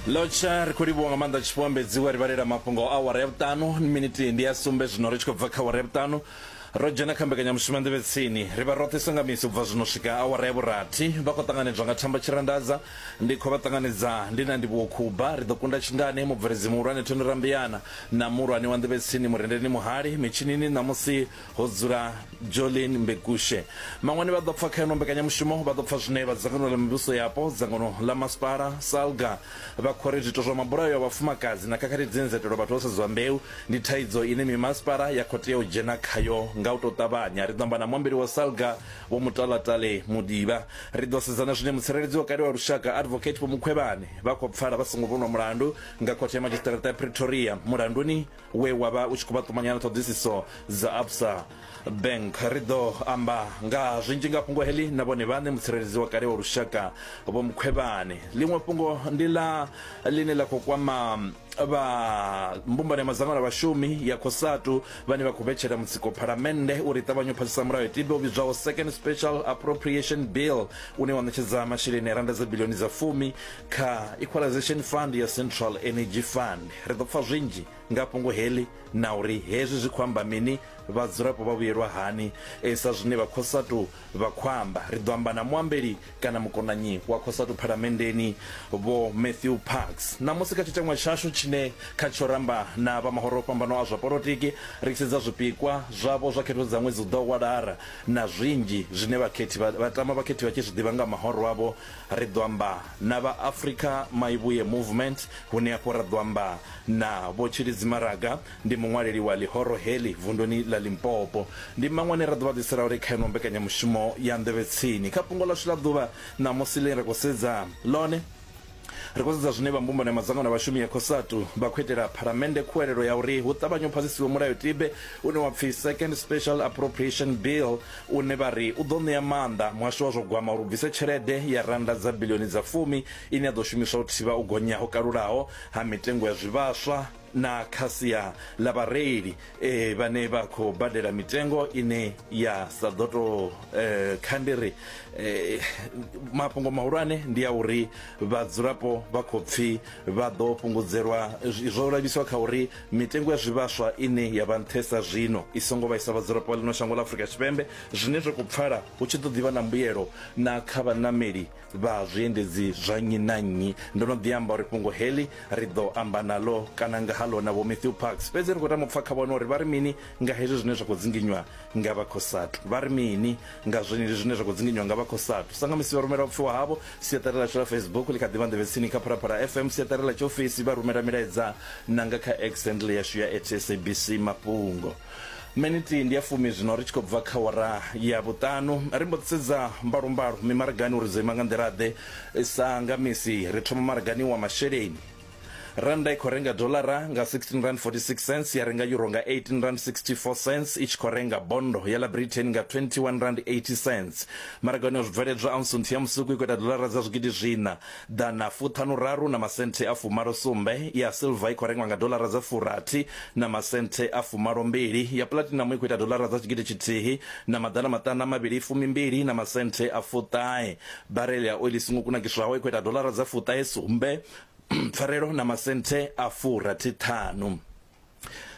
lotsha ri khou livhuwa nga maanḓa tshifuambedziwe ri vhalela mafhungo a awara ya vhuṱanu miniti ndi ya sumbe zwino ri tshi khou bva kha awara ya vhuṱanu ro dzhena kha mbekanyamushumo ya nḓevhe tsini ri vha roṱhe songa misi u bva zwino swika awara ya vhurathi vha khou ṱanganedzwa nga thamba tshirandadza ndi khou vha ṱanganedza ndi na ndivhuwo khuba ri ḓo kunda tshingani mubveledzi muhulwane thoni rambiyana na muhulwane wa nḓevhe tsini murendeni muhali mitshinini ṋamusi ho dzula jolin mbekushe maṅwani vha ḓo pfa kha ino mbekanyamushumo vha ḓo pfa zwine vha dzangano ḽa mivhuso yapo dzangano ḽa masipala salga vha khori zwiito zwa mabulayo ya vhafumakadzi na khakhathi dzine dza itelwa vhathu vho sedzwa mbeu ndi thaidzo ine mimasipala ya khou tea u dzhena khayo nga u tou ṱavhanya ri ḓo amba na muambeli wa salga vho mutalatale muḓivha ri ḓo sedzana zwine mutsireledzi wa kale wa lushaka advocate vho mukhwevhane vha khou pfala vha songo vhonwa mulandu nga khothe ya madzhisiṱaraṱa ya pretoria mulanduni we wa vha u tshi khou vha ṱumanya na ṱhoḓisiso dza absa bank ri ḓo amba nga zwinzhi nga fhungo heḽi na vhone vhaṋe mutsireledzi wa kale wa lushaka vho mukhwevhane ḽiṅwe fhungo ndi ḽa ḽine ḽa khou kwama vha mbumbano ya madzangano a vhashumi ya cosatu vhane vha khou vhetshela mutsiko phalamennde uri ṱavhanye u phasisa mulayo tibe u vhidzwaho second special appropriation bill une wa ṋetshedza masheleni a randa dza bilioni dza fumi kha equalization fund ya central energy fund Ri ḓo pfa zwinzhi nga fhungo heḽi na uri hezwi zwi khou amba mini, vhadzulapo vha vhuyelwa hani. Sa zwine vha Cosatu vha khou amba, ri ḓo amba na muambeli kana mukonanyi wa Cosatu Phalamenndeni, Vho Matthew Parks, ṋamusi kha tshiteṅwa tshashu tshine khatsho ra amba na vha mahoro o fhambanaho a zwa polotiki ri tshi sedza zwipikwa zwavho zwa khetho dza ṅwedzi u ḓaho wa Lara na zwinzhi zwine vhakhethi vha tama vhakhethi vha tshi zwi ḓivha nga mahoro avho Ri ḓo amba na vha Africa Maivhuye Movement hune afho ra ḓo amba na Vho Tshilidzi Maraga, ndi muṅwaleli wa ḽihoro heḽi vunduni ḽa Limpopo. Ndi mmaṅwe ane ra ḓo vha ḓisela hone kha ino mbekanyamushumo ya Nḓevhe Tsini. Kha fhungo ḽashu ḽa ḓuvha ṋamusi ḽine ra khou sedza ḽone, ri khou sedza zwine vha mbumbano ya madzangano a vhashumi ya Cosatu vha khou itela Phalamennde khuwelelo ya uri hu ṱavhanye u phasisiwe mulayotibe une wa pfi Second Special Appropriation Bill une vha ri u ḓo ṋea maanḓa muhasho wa zwa gwama uri u bvise tshelede ya rannda dza biḽioni dza fumi ine ya ḓo shumiswa u thivha u gonya ho kalulaho ha mitengo ya zwivhaswa na kha sia ḽa vhareili e, vhane vha khou badela mitengo ine ya sa ḓo tou e, kha ndi ri e, mafhungo mahulwane ndi a uri vhadzulapo vha khou pfi vha ḓo fhungudzelwa zwo lavhiswa kha uri Mitengo ya zwivhaswa ine ya vha nṱhesa zwino i songo vhaisa vhadzulapo vha ḽino shango ḽa Afrika Tshipembe, zwine zwa khou pfala hu tshi ḓo ḓi vha na mbuyelo na kha vhaṋameli vha zwiendedzi zwa nnyi na nnyi. Ndo no ḓi amba uri fhungo heḽi ri ḓo amba naḽo kana nga ha ḽo na Vho Matthew Parks, fhedzi ri khou tama u pfa kha vhone uri vha ri mini nga hezwi zwine zwa khou dzinginywa nga vha Cosatu. Vha ri mini? Nga zwenezwi zwine zwa khou dzinginywa nga vha Cosatu, sa nga musi vha rumela u pfiwa havho, siaṱari ḽashu ḽa Facebook ḽi kha ḓi vha nḓevhe tsini kha Phalaphala FM, siaṱari ḽa tshiofisi, vha rumela milaedza na nga kha X handle yashu ya at SABC Mafhungo. Menithi ndi ya fumi zwino ri tshi khou bva kha awara ya vhuṱanu. Ri mbo ḓi sedza mbalombalo mimaragani uri dzo ima nga nḓila-ḓe. Sa nga misi, ri thoma maragani wa masheleni. Rannda i khou renga doḽara nga R16.46 ya renga yuro nga R18.64 i tshi khou renga bondo ya ḽa Britain nga R21.80. Maragoni ya zwibveledzwa aunsu nthihi ya musuku i khou ita doḽara dza zwigidi zwiṋa, ḓana fuṱhanu-raru na masenthe a fumalo-sumbe, ya silva i khou rengwa nga doḽara dza furathi na masenthe a fumalo-mbili, ya puḽatinamu i khou ita doḽara dza tshigidi tshithihi na maḓana maṱanu a mavhili, fumi-mbili na masenthe a fuṱahe. Barele ya oiḽi i songo kunakiswaho i khou ita doḽara dza fuṱahe-sumbe, pfarelo na masenthe a furathi ṱhanu.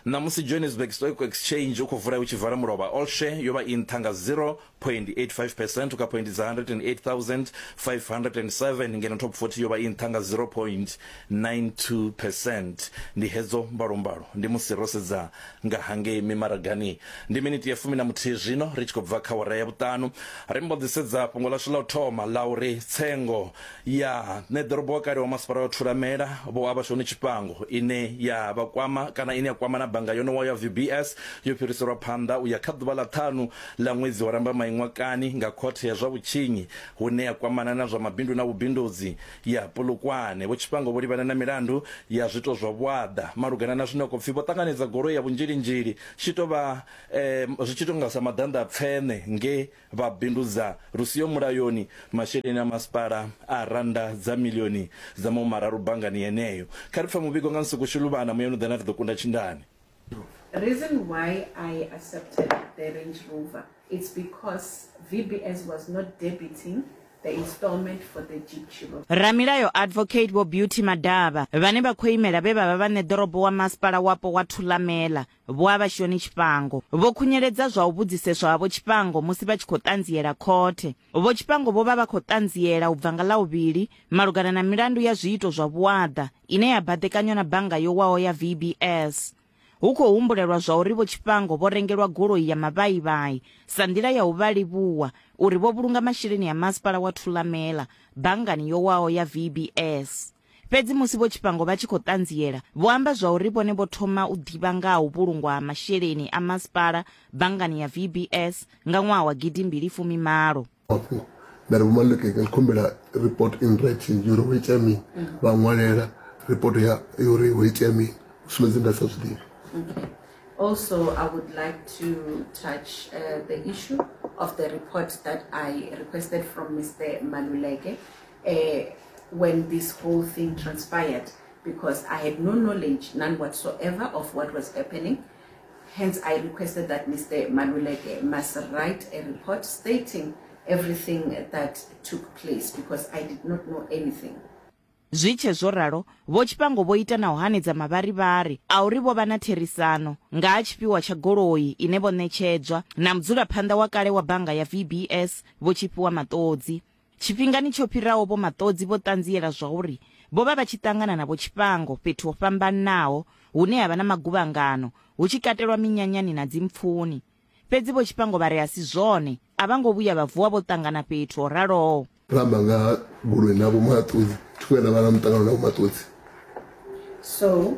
Ṋamusi Johannesburg Stock Exchange u khou vula u tshi vala mulovha all share yo vha i nṱha nga 0.85 percent kha phoindi dza 108,507 ngeno top 40 yo vha i nṱha nga 0.92 percent. Ndi hedzo mbalombalo ndi musi ro sedza nga hangei mimaragani. Ndi miniti ya fumi na muthihi zwino ri tshi khou bva kha awara ya vhuṱanu. Ri mbo ḓi sedza fhungo ḽashu ḽa u thoma ḽa uri tsengo ya ṋeḓorobo wa kale wa masipala wa thulamela vho avhashoni tshifhango ine ya vha kwama kana ine ya kwama na bannga yonowa ya vbs yo fhiriselwa phanḓa u ya kha ḓuvha ḽa ṱhanu ḽa ṅwedzi wa rambamai ṅwakani nga khothe ya zwa vhutshinyi hune ya kwamana na zwa mabindu na vhubindudzi ya polokwane vho tshifhango vho livhana na milandu ya zwito zwa vhuaḓa malugana na zwine khou pfi vho ṱanganedza goloi ya vhunzhilinzhili tshi tou vha um, zwi tshi tou nga sa maḓanḓa a tsene nge Vha bindudza lu siho mulayoni masheleni a masipala a rannda dza milioni dza mahumararu banngani yeneyo. Kha ri pfe muvhigo nga nsuku Shuluvhana muyani u ḓe na ri ḓo kunda tshindani. Reason why I accepted the Range Rover it's because VBS was not debiting the installment for the Jeep Cherokee. Ramilayo Advocate Vho Beauty Madaba, vhane vha khou imela vhe vha vha vhaṋeḓorobo wa Masipala Wapo wa Thulamela, Vho Abashoni Tshifhango vho khunyeledza zwa u vhudziseswa ha Vho Tshifhango musi vha tshi khou ṱanziela khothe. Vho Tshifhango vho vha vha khou ṱanziela u bva nga Ḽavhuvhili malugana na milandu ya zwiito zwa vhuaḓa ine ya baḓekanywa na bannga yo waho ya VBS. Hu khou humbulelwa zwauri Vho Tshifhango vho rengelwa goloi ya mavhaivhai sa nḓila ya u vha livhuwa uri vho vhulunga masheleni a Masipala wa Thulamela banngani yo waho ya VBS. Fhedzi musi vho tshifhango vha tshi khou ṱanziela, vho amba zwauri vhone vho thoma u ḓivha nga ha u vhulungwa ha masheleni a masipala banngani ya VBS nga ṅwaha wa gidi mbili fumi malo. Hafhu nda ri, Vho Maluleke, ndi khumbela report in writing yuri ho itea mini, vha ṅwalela report ya yuri ho itea mini, u sumbedza nda sa zwi ḓivhi. Okay. Also, I would like to touch uh, the issue of the report that I requested from Mr. Maluleke. uh, when this whole thing transpired because I had no knowledge, none whatsoever, of what was happening. Hence, I requested that Mr. Maluleke must write a report stating everything that took place because I did not know anything. zwi tshe zwo ralo vho tshipango vho ita na u hanedza mavharivhari a uri vho vha na therisano nga ha tshifhiwa tsha goloi ine vho ṋetshedzwa na mudzulaphanḓa wa kale wa bannga ya vbs vho tshifhiwa maṱodzi Tshifhingani tsho fhiraho vho Maṱodzi vho ṱanziela zwauri vho vha vha tshi ṱangana na vho Tshifhango fhethu ho fhambanaho hune ha vha na maguvhangano, hu tshi katelwa minyanyani na dzimpfuni. Fhedzi vho Tshifhango vha ri a si zwone, a vha ngo vhuya vha vuwa vho ṱangana fhethu ho raloho. Ro amba nga ha goloi na vho Maṱodzi, thi vhuya nda vha na muṱangano na vho Maṱodzi. So,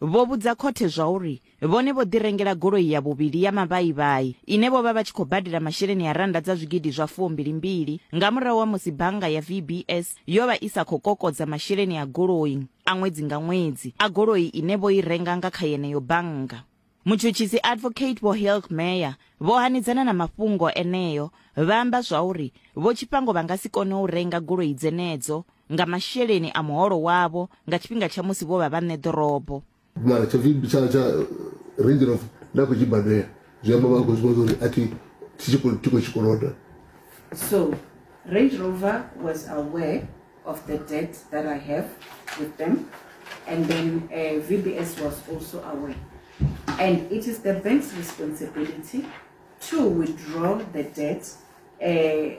Vho vhudza khothe zwauri vhone vho ḓirengela goloi ya vhuvhili ya mavhaivhai ine vho vha vha tshi khou badela masheleni a rannda dza zwigidi zwa fuombili-mbili nga murahu ha musi bannga ya VBS yo vha i sa khou kokodza masheleni a goloi a ṅwedzi nga ṅwedzi a goloi ine vho i renga nga kha yeneyo bannga. Mutshutshisi Advocate Vho Hilk Meyer vho hanedzana na mafhungo eneo vha amba zwauri vho Tshifhango vha nga si kone u renga goloi dzenedzo nga masheleni a muholo wavho nga tshifhinga tsha musi vho vha vhaṋe ḓorobo. Mara tsha pfi tsha tsha range of na khou tshi badela zwi amba vha khou zwi vhona uri a thi thi khou thi khou tshikoloda So, Range Rover was aware of the debt that I have with them, and then uh, VBS was also aware. And it is the bank's responsibility to withdraw the debt uh,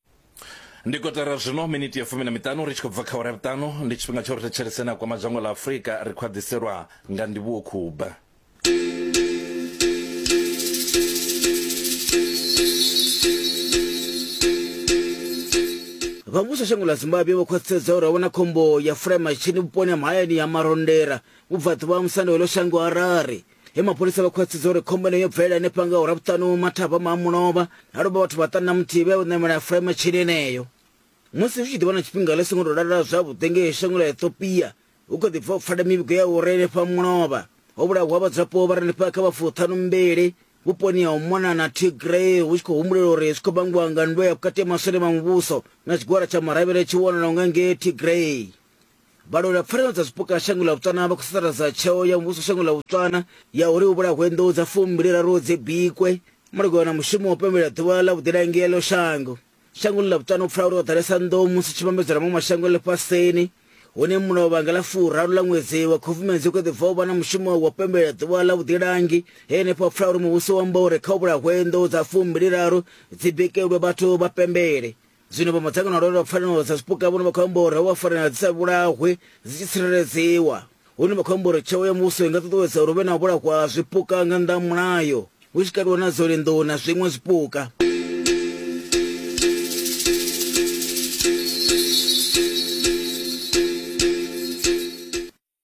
ndi kotara zwino miniti ya fumi na miṱanu ri tshi khou bva kha awara ya vhuṱanu ndi tshifhinga tsha uri thetshelese na kwama dzhango ḽa afurika ri khou aḓiselwa nga ndivhuwo khuba vha muvhuso shango ḽa zimbabwe vho khwaṱhisedza uri a vhona khombo ya fulaimashini vhuponi ha mahayani ya marondera vhubvaḓuvha ha musanda weḽo shango harare he mapholisa vha khwaṱhisedza uri khombo ine yo bvelela henefha nga ura vhuṱanu mathavha ma mulovha na lovha vhathu vhaṱanu na muthihi vhe u ṋamela furema tshini eneyo musi zwi tshi ḓivha na tshifhinga ḽi songo tou lalala zwavhuḓi ngei shango ḽa ethiopia hu kho ḓi bva u pfala mivhigo ya uri henefha mulovha ho vhulawa vhadzulapo vha re henefha kha vhafuṱhanu mbili vhuponi ha u mona na tigray hu tshi khou humbulela uri zwi khou vhangiwa nga ndwe ya vhukati ya maswole ma muvhuso na tshigwada tsha maravhele tshi wanalaho nga ngei tigray vhalweli vha pfanelo dza zwipuka shango ḽa botswana vha khou sasaladza tsheo ya muvhuso shango ḽa botswana ya uri hu vhulahwe nḓou dza fumbiliraru dzi bikwe malugana na mushumo wa u pembelela ḓuvha ḽa vhuḓilangi ḽo shango shangoni ḽa botswana u pfala uri ho ḓalesa nḓou musi tshi vhambedzwa na maṅwe mashango ḽifhasini hune mulayo vhanga ḽa furaru ḽa ṅwedzi wa khubvumedzi u kho ḓi bva u vha na mushumo wa u pembelela ḓuvha ḽa vhuḓilangi he henefho pfala uri muvhuso wa amba uri kha u vhulahwe nḓou dza fumbiliraru dzi bikelwe vhathu vha pembele zwino vha madzangano a lwela pfanelo dza zwipuka vhono vha khou amba uri havha fanela dzi sa vhulahwe dzi tshi tsireledziwa hune vha khou amba uri tsheo ya muvhuso i nga ṱuṱuwedza uri hu vhe na u vhulahwa ha zwipuka nga nnḓa ha mulayo hu tshi kaliwa na dzone nḓou na zwiṅwe zwipuka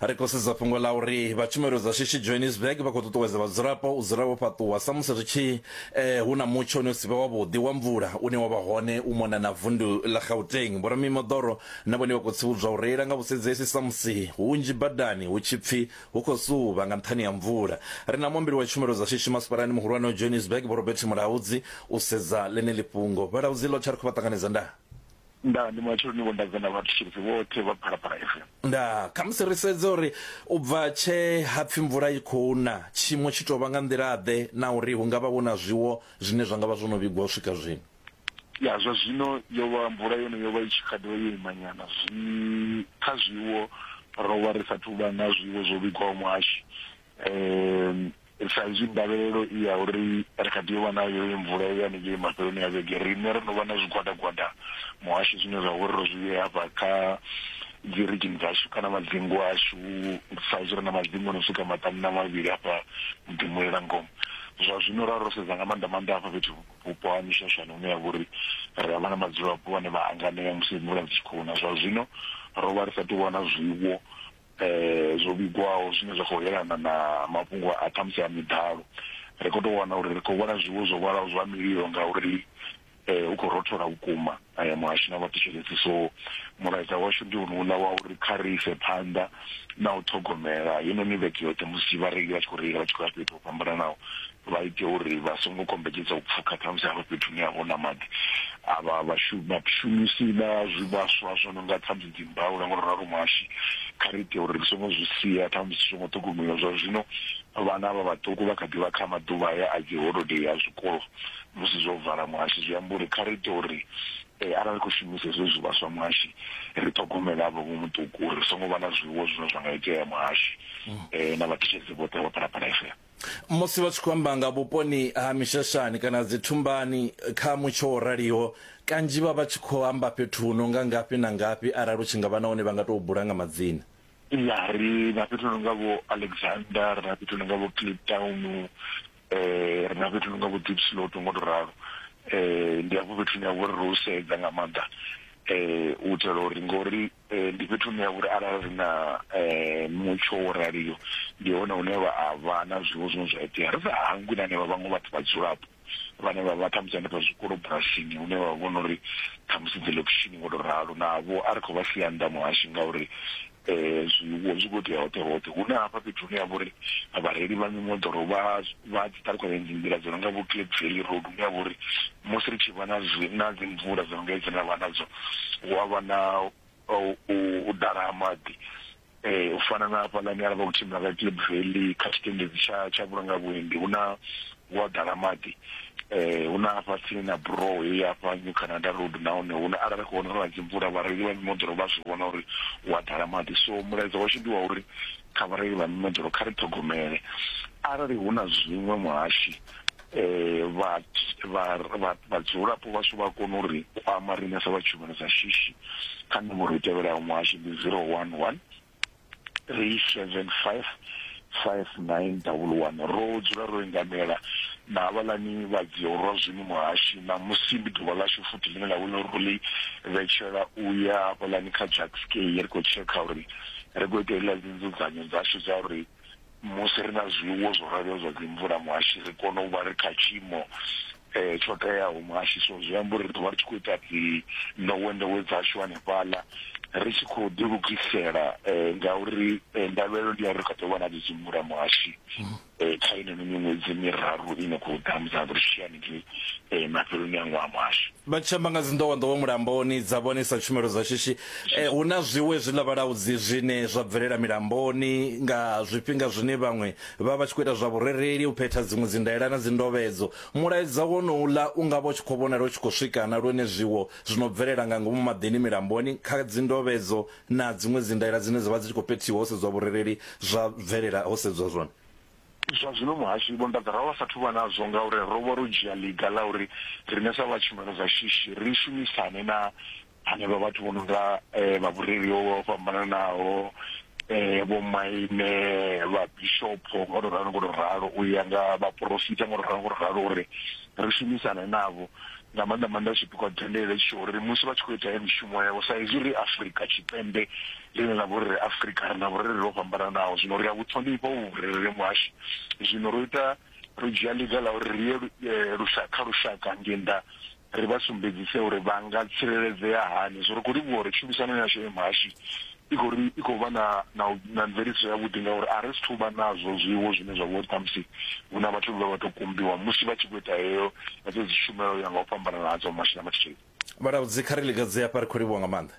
Ri khou sedza fhungo ḽa uri vha tshumelo dza shishi Johannesburg vha khou ṱuṱuwedza vhadzulapo u dzula vho fhaṱuwa samusi ri tshi eh, hu na mutsho une u si vhe wavhuḓi wa mvula une wa vha hone u mona na vundu ḽa Gauteng. Vhoramimoḓoro na vhone vha khou tsivhudzwa u reila nga vhusedzeisi samusi hunzhi badani hu tshi pfi hu khou suvha nga nṱhani ha mvula. Ri na muambeli wa tshumelo dza shishi masipalani muhulwane wa Johannesburg Vho Robert Mulaudzi u sedza ḽeneḽi fhungo. Vhalaudzi Lotha ri khou vha ṱanganedza ndaa. Ndaa, ndi matsheloni vho nda bve na vhathetshelesi vhoṱhe vha Phalaphala FM. Ndaa, khamusi ri sedze uri u bva tshe ha pfi mvula i khou na, tshiimo tshi tou vha nga nḓila-ḓe na uri hu nga vha vho na zwiwo zwine zwa nga vha zwo no vhigwa u swika zwino? Ya, zwa zwino yo vha, mvula yone yo vha i tshi kha ḓi vha yo imanyana. Zwi, kha zwiwo ro vha ri sa athu u vha na zwiwo zwo vhigwaho muhashi. um sa izwi ndavhelelo i ya uri ri kha tea u vha nayo i mvula ya haningei mafheloni a vhege riṋe ro no vha na zwigwadagwada muhasho zwine zwa uri ro zwi vhea hafha kha dzi rigini dzashu kana madzingu ashu sa izwi ri na madzingu no swika maṱanu na mavhili hafha muḓimulela ngomu zwa zwino ra ro sedza nga maanḓa maanḓa hafha fhethu vhupo ha mishashani hune ya vha uri ri avha na madzulapo vhane vha hanganea musi mvula dzi tshi khou na zwa zwino ro vha ri sa tou vha na zwiwo um zwo vhigwaho zwine zwa khou yelana na mafhungo a ṱhamusi a miḓalo ri khou tou wana uri ri khou vhona zwiwo zwo vhalaho zwa mililo ngauri um hu khou rothola vhukuma um muhasho na vhathetshelesi so mulaedza washu ndi unuuḽa wa uri kha ri ise phanḓa na u ṱhogomela heinoni vhege yoṱhe musi vhareili vha tshi khou reila vha tshi khou ya fhethu ho fhambananaho vha ite uri vha songo kombetshedza u pfuka khamusi hafho fhethu hune ha vha hu na maḓi a vha vhashumisi vha zwivhaswa zwo no nga khamusi dzi mbaula ngo ralo muhashi kha ri ite uri ri songo zwi sia khamusi zwi songo ṱhogomeliwa zwa zwino vhana vha vhaṱuku vha kha ḓi vha kha maḓuvha haya a dzi holodei ya zwikolo musi zwo vala muhashi zwi amba uri kha ri ite uri eh, arali khou shumisa hezwo zwivhaswa muhashi ri ṱhogomele avho vho muṱuku uri ri songo vha na zwiwo zwine zwa nga itea muhashi um na vhathetshelesi vhoṱhe vha phalaphala fm musi vha tshi khou amba nga vhuponi ha mishashani kana dzi thumbani kha mutsho wo raliho kanzhi vha vha tshi khou amba fhethu hu no nga ngafhi na ngafhi arali u tshi nga vha na hone vha nga tou bula nga madzina ya ri na fhethu hu no nga vho alexander ri na fhethu hu no nga vho clip town um ri na fhethu hu no nga vho deep slot ngo to ralo um ndi hafho fhethu hune ha vha uri ro sedza nga maanḓa um u itela uri ngori Eh, ndi fhethu hune ha vhuri arali ri na eh, mutsho wo raliyo ndi hone hune vha a vha na zwiwo zwine zwa itea ri sa hangwi na henevha vhaṅwe vhathu vhadzulapo vhane vha vha ṱhamusi hanefha zwikolo bulasini hune vha vhona uri ṱhamusi dzi lokishini ngo to ralo navho a ri khou vha sia nnḓa muhashi ngauri um zwiwo zwi khou tea hoṱhe hoṱhe hune hafha fhethu hune ya vha uri vhareili vha mimoḓoro vha vha dzi ṱalukanya dzi nḓila dzo no nga vho cape valley road hune ya vha uri Musi ri tshi vha na zwi, na dzimvula dzo no nga hedzi na vha nadzo, hu a vha na u ḓala ha maḓi. U fana na hafhaḽani arali vha khou tshimbila nga Klip Valley kha tshitendedzi tsha tsha vhulunga vhuendi, hu na, hu a ḓala maḓi. Hu na hafha tsini na buroho heyi ya hafha New Canada Road na hone hu na, arali ri khou vhona uri hu na dzimvula vhareili vha mimoḓoro vha a zwi vhona uri hu a ḓala maḓi. So mulaedza washu ndi wa uri kha vhareili vha mimoḓoro kha ri ṱhogomele arali hu na zwiṅwe muhashi um vhadzulapo vhashu vha kone uri kwama riṋe sa vha tshumelo dza shishi kha nomboro i tevhelaho muhasho ndi zero one one three seven five five nine double one ro dzula ro engamela na havhaḽani vha dziorwa zwino muhashi ṋamusi ndi ḓuvha ḽashu futhi ḽine ḽa vhona uri ro ḽi vhetshela u ya hafhaḽani kha jackskey ri khou tshekha uri ri khou ita iḽa dzi nzudzanyo dzashu dza uri musi ri na zwiwo zwo raloho zwa dzimvula muhashi ri kone u vha ri kha tshiimo tsho teaho muhashi so zwi amba uri ri ḓo vha ri tshi khou ita dzi nḓowenḓowe dzashu hanefhaḽa ri tshi khou ḓi lugisela ngauri ndavhelelo ndi ya uri ri kha ḓo vha na dzi dzimvula muhashi kha inoni miṅwedzi miraru ine khou ḓa musi ri tshi ya haningei mafheloni a ṅwaha muhashi. Vha tshi amba nga dzi nḓowenḓowe mulamboni dza vhonisa tshumelo dza shishi Hu na zwiwe zwiḽa vhalaudzi zwine zwa bvelela milamboni nga zwifhinga zwine vhaṅwe vha vha vha tshi khou ita zwa vhurereli, u phetha dziṅwe dzindaela na dzindovhedzo. Mulaedza wonouḽa u nga vha u tshi khou vhonala u tshi khou swika na lwone zwiwo zwi no bvelela nga ngomu maḓini milamboni kha dzindovhedzo na dziṅwe dzindaela dzine dza vha dzi tshi khou phethiwa ho sedzwa vhurereli zwa bvelela ho sedzwa zwone. Zwa zwino muhashi Vho Nḓadza ro vha sa thu vha nazwo ngauri ro vha ro dzhia ḽiga ḽa uri riṋe sa vha tshumelo dza shishi ri shumisane na hanevha vhathu vho no nga um vha vhureli ho vha fhambananaho um vho maine vha bishopho ngo to ralo ngo to ralo u ya nga vhaporofita ngo to ralo ngo to ralo uri ri shumisane navho nga maanḓa maanḓa zwi bikwa tendele tsho uri musi vha tshi khou ita ya mishumo yavho sa izwi ri afurika tshipembe ḽine ḽa vha uri ri afurika ri na vhurereli ho fhambananaho zwino ri a vhu ṱhonifha u vhurereli muhasho zwino ro ita ro dzhia ḽiga ḽa uri ri ye eh, lushaka kha lushaka ngei nnḓa ri vha sumbedzise uri vha nga tsireledzea hani. So ri khou livhuwa uri tshumisano yashu ya muhashi i khou ri i khou vha na na na mveledziso yavhuḓi ngauri a ri sithu vha nazwo zwiwo zwine zwa vha uri ṱhamusi hu na vhathu vhe vha tou kumbiwa musi vha tshi khou ita heyo na dzedzo dzi tshumelo ya nga u fhambanana hadzo ha muhashi na mathitsheni. Vhalaudzi, kha ri lingedze hafha, ri khou livhuwa nga maanḓa.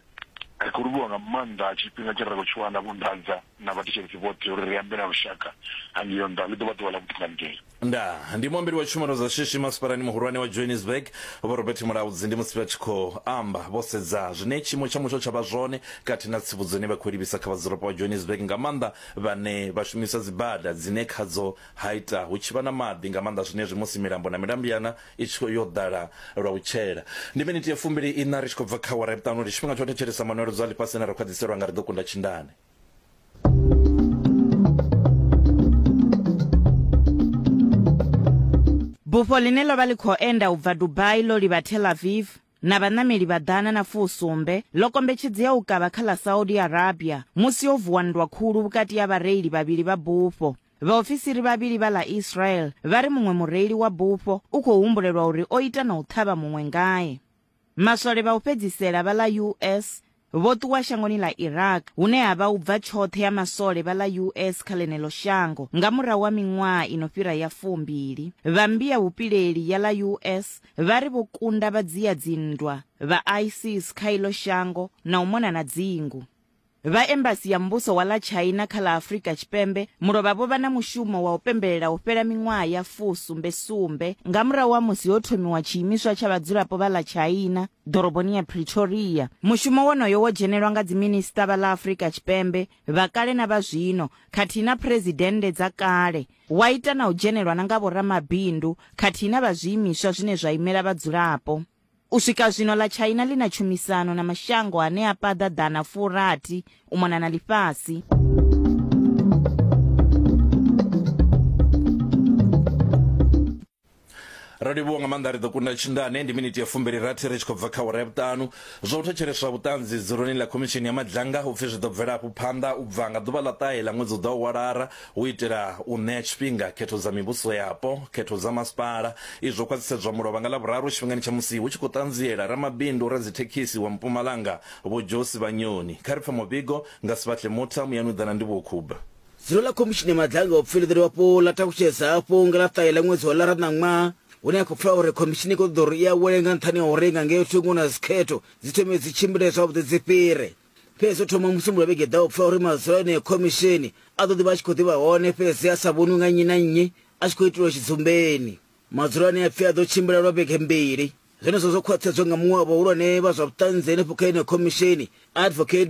Ri khou livhuwa nga maanḓa tshifhinga tshine ra khou tshi wana, vho Ndadza. na vhathetshelesi vhoṱhe uri ri ambe na lushaka hangei nṱha. Ḽi ḓo vha ḓuvha ḽa vhuṱunganitsheli. Ndaa. Ndi muambeli wa tshumelo dza shishi masipalani muhulwane wa Johannesburg, Vho Robert Mulaudzi ndi musi vha tshi khou amba vho sedza zwine tshiimo tsha mutsho tsha vha zwone khathihi na tsivhudzo ine vha khou i livhisa kha vhadzulapo vha Johannesburg nga maanḓa vhane vha shumisa dzibada dzine khadzo ha ita hu tshi vha na maḓi nga maanḓa zwenezwi musi milambo na milambyana i tshi khou yo ḓala lwa u tshela. Ndi miniti ya fumbili-iṋa ri tshi khou bva kha awara ya vhuṱanu. Ndi tshifhinga tsha u thetshelesa manweledzo a ḽifhasi ane ra khwaṱhiselwa nga Ri Ḓo Kunda Tshindane. bufho line ḽo vha ḽi khou enda u bva dubai ḽo livha tel aviv na vhaṋameli vha ḓana na fusumbe ḽo kombetshedzea u kavha kha ḽa saudi arabia musi yo vuwa nndwa khulu vhukati ha vhareili vhavhili vha bufho vhaofisiri vhavhili vha ḽa israel vha ri muṅwe mureili wa bufho u khou humbulelwa uri o ita na u ṱhavha muṅwe ngae Maswole vha u fhedzisela vha ḽa US vho ṱuwa shangoni ḽa Iraq hune ha vha u bva tshoṱhe ya maswole vha ḽa US kha ḽeneḽo shango nga murahu ha miṅwaha i no fhira ya fumbili. Vha mmbi ya vhupileli ya ḽa US vha ri vho kunda vhadzia dzinndwa vha ISIS kha iḽo shango na u mona na dzingu. Vha Embasi ya Muvhuso wa ḽa China kha ḽa Afrika Tshipembe mulovha vho vha na mushumo wa u pembelela u fhela miṅwaha ya fu sumbe sumbe nga murahu ha musi ho thomiwa tshiimiswa tsha vhadzulapo vha ḽa China ḓoroboni ya Pretoria. Mushumo wonoyo wo dzhenelwa nga dziminisiṱa vha ḽa Afrika Tshipembe vha kale na vha zwino khathihi na phuresidennde dza kale, wa ita na u dzhenelwa na nga vhoramabindu khathihi na vha zwiimiswa zwine zwa imela vhadzulapo. U swika zwino ḽa China ḽi na tshumisano na mashango ane a paḓa ḓana furathi u mona na ḽifhasi. ro livhuwa nga maanḓa ri ḓo kunda tshindane ndi miniti ya fumbili rathi ri tshi khou bva kha wara ya vhuṱanu zwa u thetsheleswa vhuṱanzi dzuloni ḽa khomishini ya madzhanga upfi zwi ḓo bvela hafhu phanḓa u bva nga ḓuvha ḽa ṱahe ḽa ṅwedzi u ḓaho wa lara U itela u ṋea tshifhinga khetho dza mivhuso yapo, khetho dza masipala, izwi zwo khwaṱhisedzwa mulovha nga Ḽavhuraru tshifhingani tsha musi hu tshi khou ṱanziela ramabindu radzithekhisi wa Mpumalanga Vho Josi Vhanyoni. Kha ri pfe muvhigo nga Sbatle Mutha, muyani u ḓa na ndivhuwo khub. Dzulo ḽa Khomishini ya Maḓange a u Pfiluḓelwa Wapo ḽa takutshedza hafhu nga ḽa ṱahe ḽa ṅwedzi wa ḽara ṋaṅwaha, hune ha khou pfala uri khomishini i khou ṱoḓa uri i awele nga nṱhani ha uri nga ngeo thungo na dzikhetho dzi thome dzi tshimbile zwavhuḓi dzi fhire. fhedzi o thoma musumbulo vhege ḓaho pfa uri madzulo eneo khomisheni a ḓo ḓivha a tshi khou ḓivha hone fhedzi a sa vhonwi nga nnyi na nnyi a tshi khou itilwa tshidzumbeni madzulo ane a pfi a ḓo tshimbila lwa vhege mbili zwenezwo zwo khwaṱhedzwa nga muṅwe wa vhahulwane vha zwa vhuṱanzi henefho kha eneo khomisheni advocate